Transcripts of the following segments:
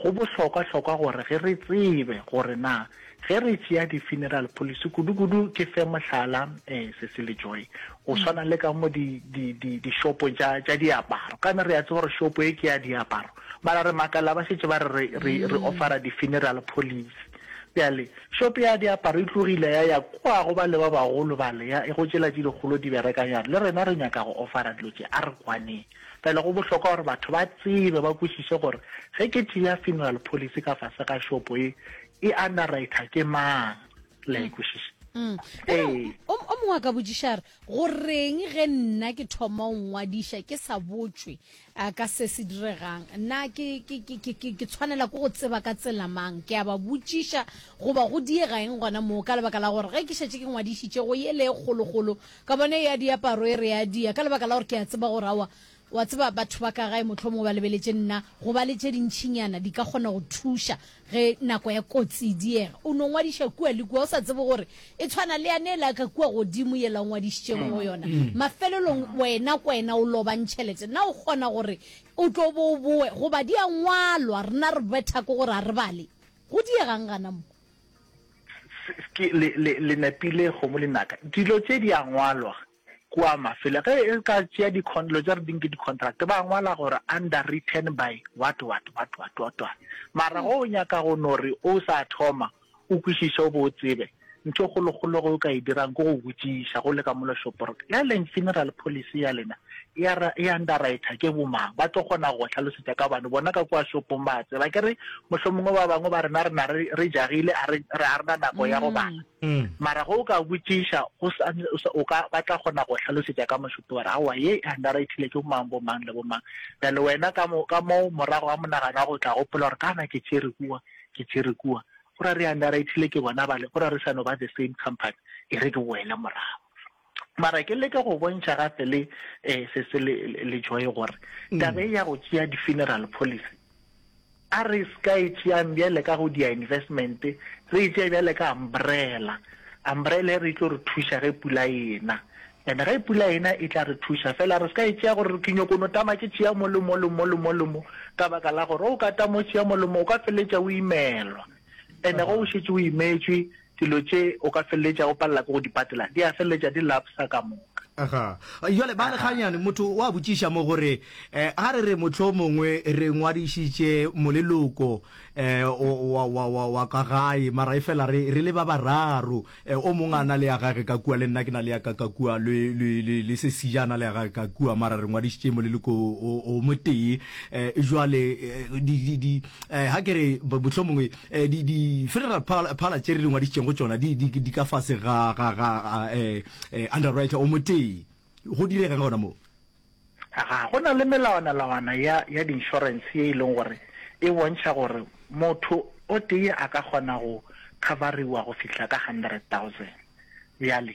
Go bohlokwa-hlokwa gore ge re tsebe gore na ge re tšea di-funeral policy, kudu-kudu ke fe mohlala, um Cecily Joy, go swana le ka mo di, di, di, dishopong tša, tša diaparo. Ka na re a tseba gore shopo ye ke ya diaparo, mara re makala ba šetše ba re re, re, re offera di-funeral policy. Bjale, shopo ya diaparo e tlogile ya ya kua go bale ba bagolo bale, ya, go tšela tše dikgolo di berekang, ya re, Le rena re nyaka go offera dilo tše, a re kwaneng. Fela go bohlokwa gore batho ba tsebe, ba kwešiše gore ge ke tšea funeral policy ka fase ga šopo e e underwriter ke mang. Le a e kwešiša? Ee. O o mongwe a ka botšiša a re, Goreng ge nna ke thoma go ngwadiša ke sa botšwe a ka se se diregang? Na ke ke ke ke ke ke tshwanela ke go tseba ka tsela mang? Ke a ba botšiša goba go diega eng gona moo ka lebaka la gore ge ke šetše ke ngwadišitše go yele e kgolokgolo Kabane ya diaparo e re ya dia, ka lebaka la gore ke a tseba gore, aowa, wa tseba, batho ba ka gae mohlomongwe ba lebeletše nna, go ba le tše dintšinyana di ka kgona go thuša ge nako ya kotsi e diega. O no ngwadiša kua le kua, o sa tsebe gore e tshwana le yane yela ka kua godimo yela o ngwadišitšego go yona. Mafelelong wena kwena o lobang tšhelete. Na o kgona gore o tlo bo o bowe? Goba di a ngwalwa, rena re bethako gore a re bale. Go diegang gana mo? ke le le le nepile go mo linaka dilo tse di a ngwalwa kwa mafelo ge e ka tšea di lo tsa re ding ke di contract ba ngwala gore under written by what what what what what what mara go o nyaka go no re o sa thoma o kwišiše o bo o tsebe ntho kgolokgolo go o ka e dirang ko go botšiša go le ka molo shoporo ya leng funeral policy ya lena ya ra e underwriter ke bomang ba tlo kgona go hlalosetša ka bane bona ka kwa shopong ba tseba ke re mohlomongwe ba bangwe ba rena rena re re jagile a re re a rena nako ya go bala mm. mara go ka botšiša go o ka ba tla kgona go hlalosetša ka moshopi wa re aowa ye e underwritile ke bomang bomang le bomang bjale wena ka mo ka moo morago wa monagano wa go tla gopola gore kana ke tšere kua ke tšere kua go ra re underwritile ke bona bale go ra re sano ba the same company e re ke boele morago Mara ke leke go bontšha gape le eh, se se le, le Joy gore mm. tabe ya go tšea di-funeral policy a re ska e tšeang bjale ka go dia investment re e tšee bjale ka umbrella umbrella e re tlo re thuša ge pula ena and ge pula ena e tla re thuša fela re ska e tšea gore ke nyoko no tama ke tšea mo le mo le mo le mo le mo ka baka la gore o ka tamo tšea mo le mo o ka feletša o imelwa and go o šetse o imetswe dilo tše o ka feleletša o palela ke go di patela di a feleletša di lapsa ka moka. Aha. Jwale ba re ganyane motho wa botšiša mo gore eh, ga re re motlho mongwe re ngwadišitše moleloko eh, wa, wa, wa, wa ka gae mara e fela re, re le ba bararo eh, o mongwe a na le ya gage ka kua le nna ke na le ya ka ka kua le, le, le, le se sija a na le ya gage ka kua mara re ngwadišitše moleloko o, o motee eh, jwale eh, di, di, di, eh, ga ke re motlho mongwe Eh, di, di federal phala, phala tše re di ngwadišitšeng go tšona di, di, di ka fase ga, ga, ga eh, eh, underwriter o motee go direga ka gona moo ga go na le melawanalawana ya, ya di-insurance ye e leng gore e bontšha gore motho o tee a ka kgona go coveriwa go fihla ka hundred thousand bjale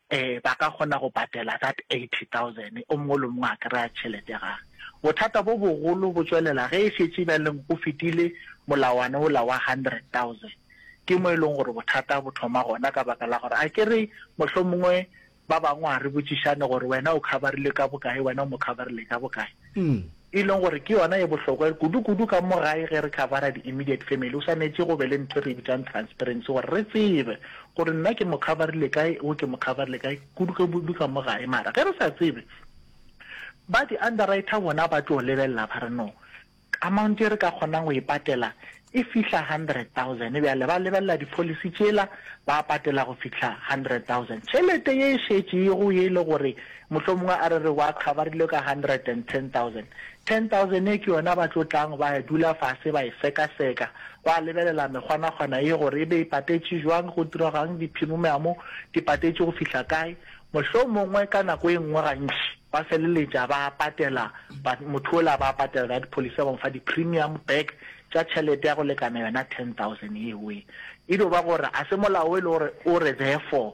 Ee, ba ka kgona go patela that eighty thousand, o mongwe le mongwe a kry-a tšhelete ya gage. Bothata bo bogolo bo tšwelela ge e šetše bjaleng go fetile molawana ola wa hundred thousand, ke mo e leng gore bothata bo thoma gona ka baka la gore a ke re mohlomongwe ba bangwe a re botšišane gore wena o cover-rilwe ka bokae, wena o mo cover-rile ka bokae. e leng gore ke yona e bohlokwa kudu-kudu ka mo gae ge re khabara di-immediate family, go swanetše go be le ntho e re e bitsang transparency gore re tsebe gore nna ke mo khabarile kae, wo ke mo khabarile kae, kudu-kudu ka mo gae. Mara ge re sa tsebe, ba di-underwriter bona ba tlo lebelela ba re no, amount e re ka kgonang go e patela e fihla hundred thousand, bjale ba lebelela dipholisi tšela, ba patela go fihla hundred thousand. Tšhelete ye e šetšego ye e le gore mohlomongwe a re re wa coverilwe ka hundred and ten thousand, ten thousand ye ke yona ba tlo tlang ba ya dula fase ba e sekaseka, ba lebelela mekgwanakgwana ye gore e be e patetše bjang, go diraga'ng, diphimumeamo di patetše go fihla kae, Mohlomongwe ka nako e nngwe gantši ba feleletša ba patela motho ola, ba patela ka dipholisa, ba mo fa di-premium back tša tšhelete ya go lekana yona 10,000 yeo. E dio ba gore ga se molao e le gore o re therefore,